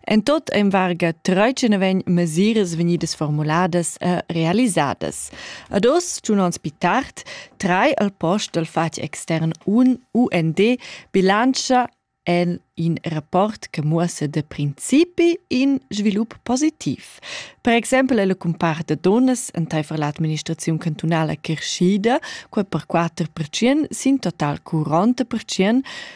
En tot ein varga 13 vegn mesiras vegnidas formuladas e realisadas. Ad oz, giun ons pi tard, trai al post dal fatg extern un UND bilantscha en in rapport che muossa de principi in svilup positiv. Per exempel è la compar de donas enteifer l'administrazione cantunale crescida, quel per 4% sin total cu 40%,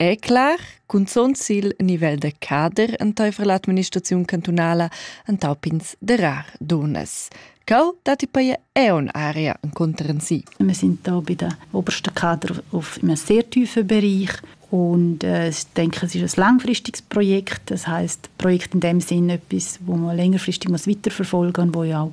È clar, cunzont sil nivel da cader enteifer l'administraziun cantunala entau pins darar dunas. Cau datti poi è un area enconter en si. Wir sind da bei den obersten Kader auf einem sehr tiefen Bereich und äh, ich denke, es ist ein langfristiges Projekt. Das heißt, Projekt in dem Sinne etwas, wo man längerfristig muss weiterverfolgen muss, wo ja auch